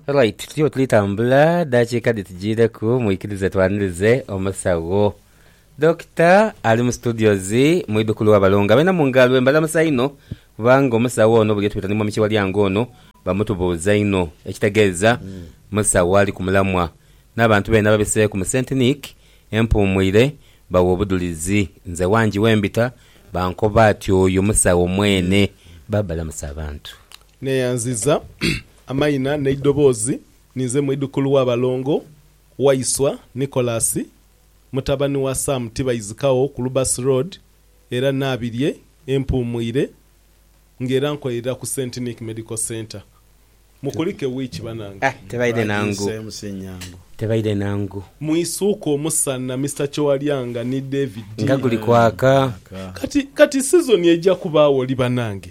Right, tuliwo tulitambula dakiika dhitujiireku mwikirize twanirize omusawo dokita ali mu studios mwidhukulu wabalongo abalina mu ngalo embalamusa inho kubanga omusawo ono buli yetwita ni mwami Kiwalyango ono bamutubuuza inho ekitegeeza musawo ali ku mulamwa n'abantu beene ababiseeku mu St Nic. Empuumwire bawa obudhulizi. Nze wangi wembita bankoba ati oyo musawo mwene. Babalamusa abantu. Neyanziza amaina neidoboozi. Ninze mwidhukulu wa Balongo, Waiswa, Nicholas, mutabani wa Sam Tibaizikagho ku Lubasi Road era Nabirye, Empuumwire. Nga era nkolerera ku Saint Nick Medical Centre. Mukulike wiiki banange. Tebaidhe na ngu. Tebaidhe na ngu. Mwisuuke omusana Mister Kyowalyanga ni David. Nga guli kwaka. Kati kati sizoni eija kubaagho li banange?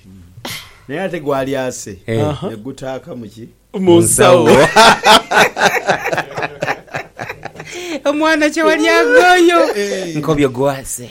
Naye ate gwalyase ne gutaaka mu ki? Mu nsawo. Omwana Kyowalyanga oyo nkobye gwase.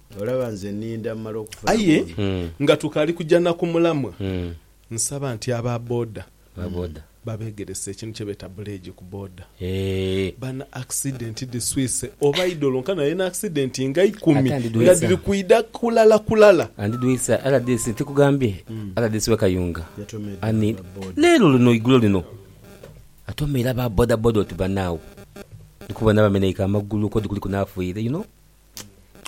Olaba nze ninda mumale okufuna Aye boona. nga tukaali kuja na ku mulamwa, nsaba nti aba boda babegerese ekintu kyebeeta buleegi ku boda. Bana accident dhiswise oba idolo nkana naye na accident nga ikumi nga dhiri kwidha kulala kulala. Andidwisa rdc ntikugambye rdc we kayunga ani leero luno igulo lino atomeire aba boda boda oti banaawe ndikubona bameneike amagulu kodi kuliku nafiire you know.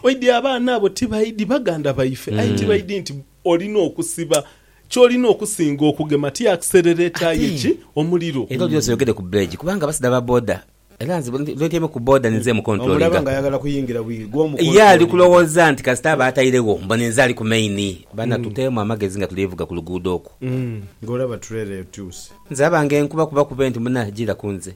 Oidhi abaana abo tibaidhi baganda baife, aye tibaidhi nti olina okusiba kyolina okusinga okugema ti akiserereta aye ki omuliro. Ebyo byonse oyogede ku beegi kubanga abasaidha ba boda era nze bwentyaime ku boda ninze emukontulolinga ye ali kulowooza nti kasita aba atairegho mbu ninze ali ku main bana tuteemu amagezi nga tuli vuga ku luguudo okwo. Nze abange nkuba kuba kube nti muna gira ku nze.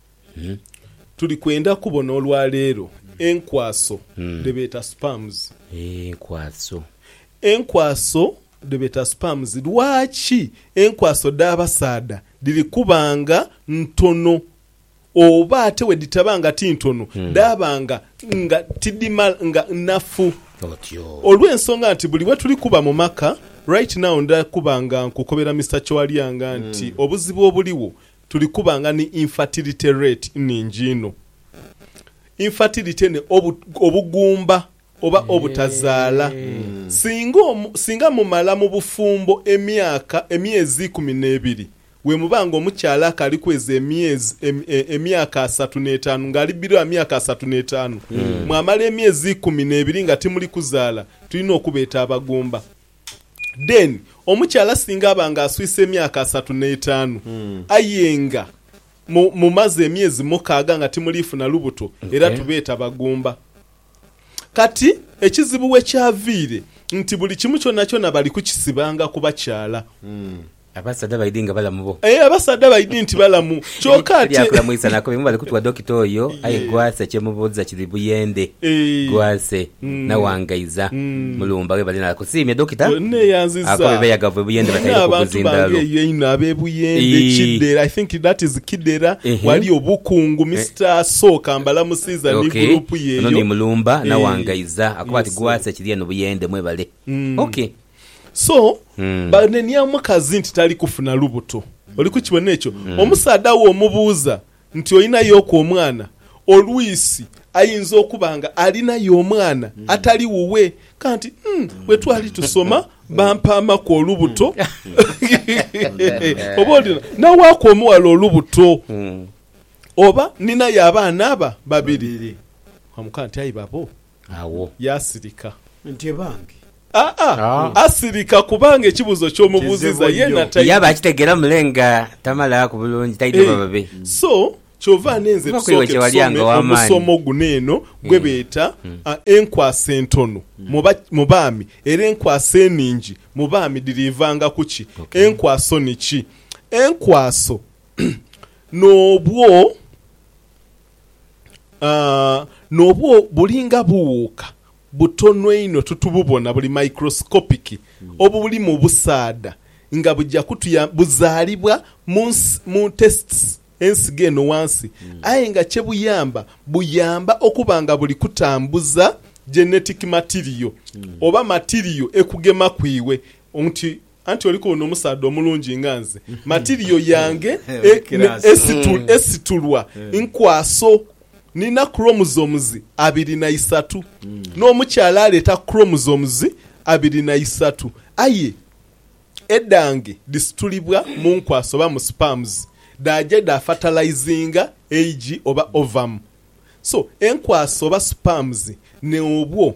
Tuli kwenda kubona olwaleero enkwaso dhe beeta sperms. Enkwaso. Enkwaso dhe beeta sperms. Lwaki enkwaso dh'abasaadha dhiri kuba nga ntono oba ate bwe dhitaba nga ti ntono dhaaba nga nga tidhimala nga nnafu? Olw'ensonga nti buli we tuli kuba mu maka, right now nda kuba nga nkukobera Mister Kyoalyanga nti obuzibu obuligho Tuli kuba nga ni infertility rate nhingi inho. Infertility ni obugumba oba obutazaala. Singa singa mumala mu bufumbo emyaka, emyezi ikumi n'ebiri, wemuba nga omukyala akaaliku ezo emyezi, emyaka asatu n'etaanu, nga ali biro ya myaka asatu n'etaanu, mwamala emyezi ikumi n'ebiri nga timuli kuzaala, tulina okubeeta abagumba. Then omukyala singa aba nga aswise emyaka asatu n'etaanu aye nga mu mumaze emyezi mukaaga nga timuliifuna lubuto era Okay. tubeeta bagumba. Kati ekizibu we kyaviire nti buli kimu kyonakyona bali kukisibanga ku bakyala. Abasaadha baidhi nga balamu bo. Aye abasaadha baidhi nti balamu kyoka ate. Tibya kulamwisa nako bye mubali kutuwa Dokita oyo aye Gwase kye mubuuza kiri buyende. Gwase, nawangaiza. Mulumba webale na kusiimye Dokita. Ako bebeeyagavu e Buyende bataire ku buzindalo. Ok, ono ni Mulumba, nawangaiza. Akoba ati Gwase kiri eno Buyende. Mwebale. Ok. So, banenia omukazi nti tali kufuna lubuto. Oli kukibona ekyo? Omusaadha wo omubuuza nti olinayoku omwana, olwisi ayinza okuba nga alinayo omwana atali wuwe. Kanti umm bwe twali tusoma bampaamaku olubuto. Oba oli nawaaku omuwala olubuto. Oba ninayo abaana aba babiri. Wamukoba nti aye babo Agho. Yaasirika. Nti ebange. Aa, asirika kubanga ekibuuzo ky'omubuuzizza yeena taidhi. Yaba akitegeera mule nga tamalaaku bulungi, taidhi oba babe. Eeh. So, kyova n'enze Kuba kweiwe tusooke kye walyanga tusome ow'amaani. omusomo guno eno gwe Eeh. beeta Mm. a, Enkwasa entono mu ba, mu baami era enkwasa enhingi mu baami dhiriivanga ku ki? Ok. Enkwaso ni ki? Enkwaso n'obwo. N'obwo bulinga buwuuka butono einho titububona buli microscopic obulimu obusaadha nga buja kutuyamba, buzaalibwa mu tests ensigo eno wansi aye nga kye buyamba, buyamba okuba nga buli kutambuza genetic material oba material ekugemaku iwe nti Anti oli kubona omusaadha omulungi nga nze, matirio yange esitulwa nkwaso. Nina chromosomes abiri na isatu, n'omukyala aleeta chromosomes abiri na isatu. Aye edhange dhisitulibwa mu nkwaso oba mu sperms, dhaaja dha fertilizinga eigi oba ovum. So enkwaso oba sperms n'obwo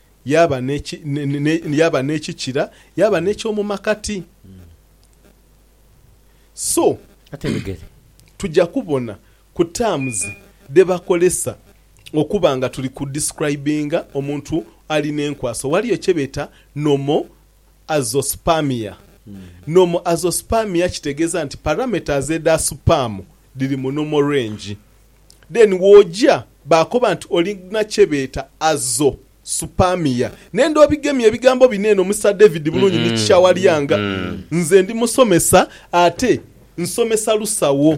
Yaaba n'eki, ne, yaaba n'ekikira, yaaba n'eky'omu makati. So, Ate ebigere? tuja kubona ku terms dhe bakolesa okuba nga tuli ku describinga omuntu ali n'enkwaso. Ghaliyo kye beeta normal azoospermia. Normal azoospermia kitegeeza nti parameters edha sperm dhiri mu normal range. Then woja bakoba nti olina kyebeta azo supamia nenda obigemye ebigambo bino eno Mister David bulungi ni kikyawalyanga nze ndi musomesa ate nsomesa lusawo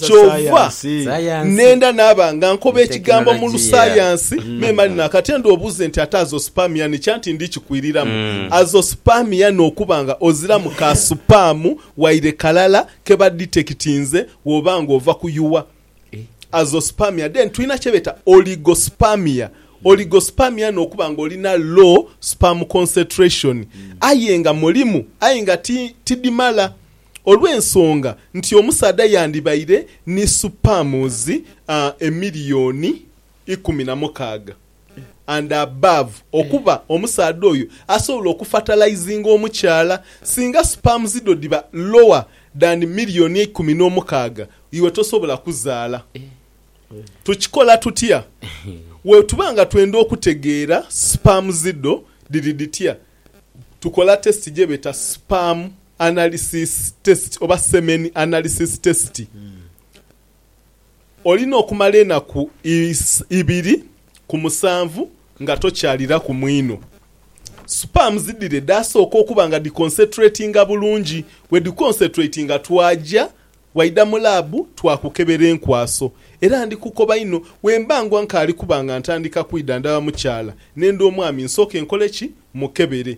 kyova nenda naba nga nkoba ekigambo mulusayansi memale nakati enda obuze nti ate azo supamia ni kya nti ndi kikwiliramu azo supamia nokuba nga oziramu ka supamu waire kalala ke baditekitinze bw'oba ng'ova kuyuwa Azoospermia. Then tulina kye beeta Oligospermia. Oligospermia n'okuba ng'olina low sperm concentration aye nga mulimu aye nga ti tidhimala olw'ensonga nti omusaadha yandibaire ni sperms emiliyoni ikumi na mukaaga. and above okuba omusaadha oyo asobola oku fertilizinga omukyala singa sperms dho dhiba lower than million eikumi n'omukaaga iwe tosobola kuzaala. Tukikola tutya? Wetuba nga twenda okutegeera sperms dho dhiri dhitya, tukola test gyebeta sperm analysis test oba semen analysis test. Olina okumala enaku ibiri ku musanvu nga tokyaliraku mwinho. Sperms dhire dhaasooka okuba nga dhiconcentratinga bulungi. Bwe dhiconcentratinga twaja waidha mu laabu twakukebera enkwaso. Era ndi kukoba inho bwe mba ngwa nkaali kuba nga ntandika kwidhandhaba mukyala n'enda omwami nsooke nkole ki? Mukebere.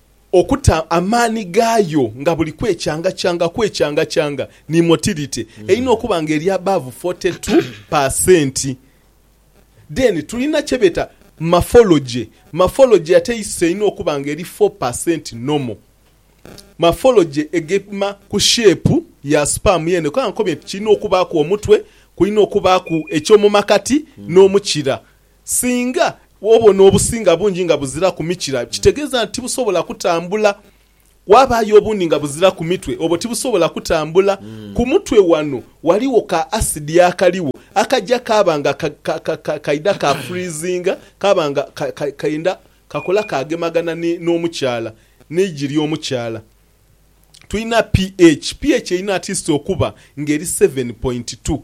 Okuta amaani gaayo nga buli kwekyangakyanga kwekyangakyanga ni motility erina okuba nga eri above forty two pa centi. Then tulina kyebeeta maphology, maphology ate iso erina okuba nga eri four pa centi normal. Maphology egema ku shape ya sperm yeene kuba nkobye nti kirina okubaaku omutwe, kulina okubaaku ekyomumakati n'omukira. Singa obona obusinga bungi nga buziraku mikira, kitegeeza nti tibusobola kutambula. Waabaayo obundi nga buziraku mitwe, obwo tibusobola kutambula. Ku mutwe wano ghaligho ka asidi akaligho akaja kaaba nga kaidha ka freezinga, kaaba nga kenda kakola kaagemagana n'omukyala, n'eigi ly'omukyala. Tulina pH. Ph erina atiisiti okuba ng'eri seven point two.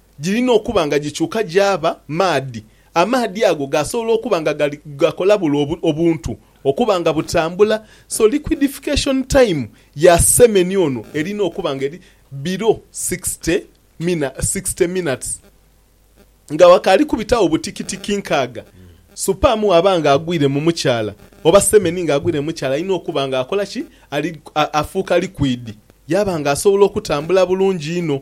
Girina okuba nga gikyuka gyaba maadhi. Amaadhi ago gaasobola okuba nga gali gakola bule obuntu okuba nga butambula. So liquidification time ya semeni ono erina okuba nga eri below sixty mina, sixty minutes. Nga wakaali kubitagho butikitiki nkaaga, supamu bwaba nga agwire mu mukyala oba semeni nga agwire mu mukyala alina okuba nga akola ki? Ali, afuuka liquid yaba nga asobola okutambula bulungi inho.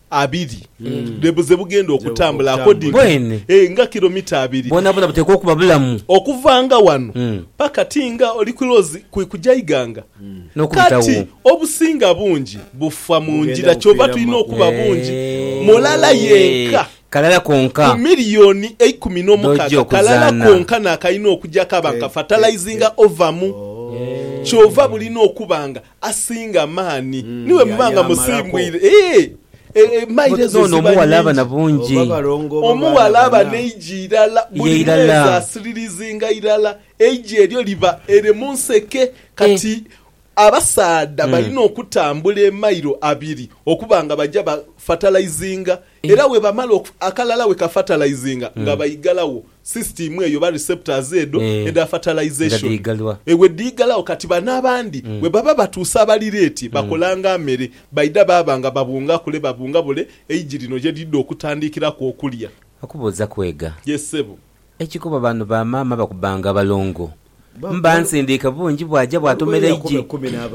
abiri dhe bu ze bugenda okutambula akodiinhi Bwene. e, nga kilomita abiri. Bwonabwona buteekwa okuba bulamu. Okuvaanga wano Mm. paka ti nga oli kulozi kwi kuja ighanga. N'okubitagho. Kati obusinga bungi bufa mu Bugenda ngira kyova bufiira mu tulina makubo. okuba bungi Eeee. mulala yenka Kalala konka. ku milioni eikumi Dh'oja n'omukaaga okuzaana. kalala konka n'akalina okuja kaba nka fatalayizinga ova mu. Kyova bulina okuba nga Asinga amaani niwe muba nga musimbwire. N'ono omughala aba na bungi. Omughala aba n'eigi irala, buli mwezi asiririzinga irala, eigi eryo liba ere mu nseke. Kati abasaadha balina okutambula emailo abiri okuba nga baja bafatalaizinga, era bwebamala akalala bwekafatalaizinga nga baigalagho. Sisitiimu eyo oba receptors edho edha fertilisation ewe dhiigalagho kati bano abandi bwe baba batuuse abalireeti bakolanga amere baidha baaba nga babunga kule babunga bule eigi lino gye lidha okutandiikiraku okulya. Okubuuza kwega. Yes ssebo. Ekikuba bano ba maama bakubanga abalongo mba nsindiika bungi bwaja bwatomera eigi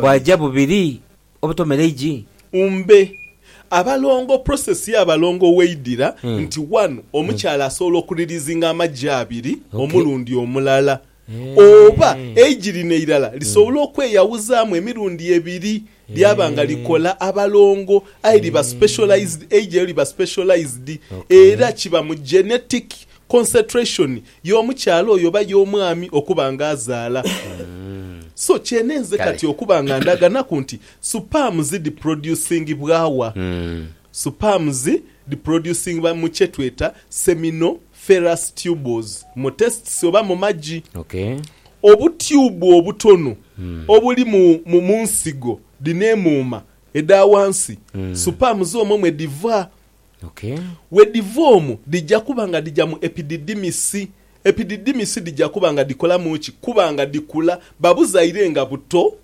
bwaja bubiri. Obutomera eigi. Umbe. Abalongo process ya balongo weidira nti wanu omukyala asobola oku releasinga amagi abiri omulundi omulala oba eigi lino eirala lisobola okweyawuzamu emirundi ebiri lyaba nga likola abalongo aye liba specialized eigi elyo liba specialized era kiba mu genetic Concentration y'omukyala oyo oba y'omwami okuba nga azaala. So kyenenze Kale. kati okuba nga ndaganaku nti supamu zidhiproducingibwagha? Supamu zi dhiproducingibwa mu kyetweta seminoferous tubles mu testes oba mu magi. Okay. Obutyubu obutono obuli mu mu munsigo dhino emuuma edha wansi, supamu z'omwo mwe dhiva Okay. Bwedhiva omwo, dhija kuba nga dhija mu epididimisi. Epididimisi dhija kuba nga dhikolamu ki? Kuba nga dhikula. Babuzaire nga buto,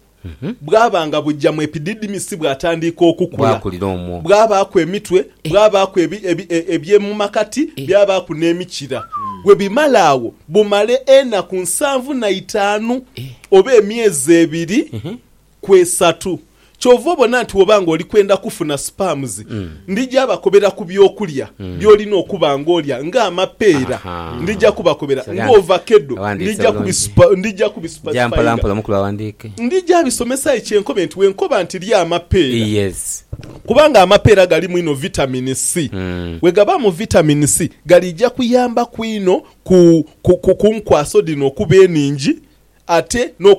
bwaba nga buja mu epididimisi bwatandiika okukula. Bwakulira omwo. Bwabaaku emitwe, bwabaaku ebi, ebi, ebyemumakati, byabaaku n'emikira. Bwebimala agho, bumale enaku nsanvu na itaanu oba emyezi ebiri Kwesatu. Kyova obona nti bwoba nga oli kwenda kufuna sperms, ndija bakobera ku by'okulya by'olina okuba nga olya nga amapeera, ndija kubakobera nga ovakedo, ndija kubisupa, ndija kubisupazipainga, ndija bisomesa aye kye nkobe nti wenkoba nti lya amapeera, kubanga amapeera galimu inho vitamin C, bwegabaamu vitamin C galiija kuyambaku inho ku, ku, ku, ku nkwaso dhino okuba eningi ate n'oku.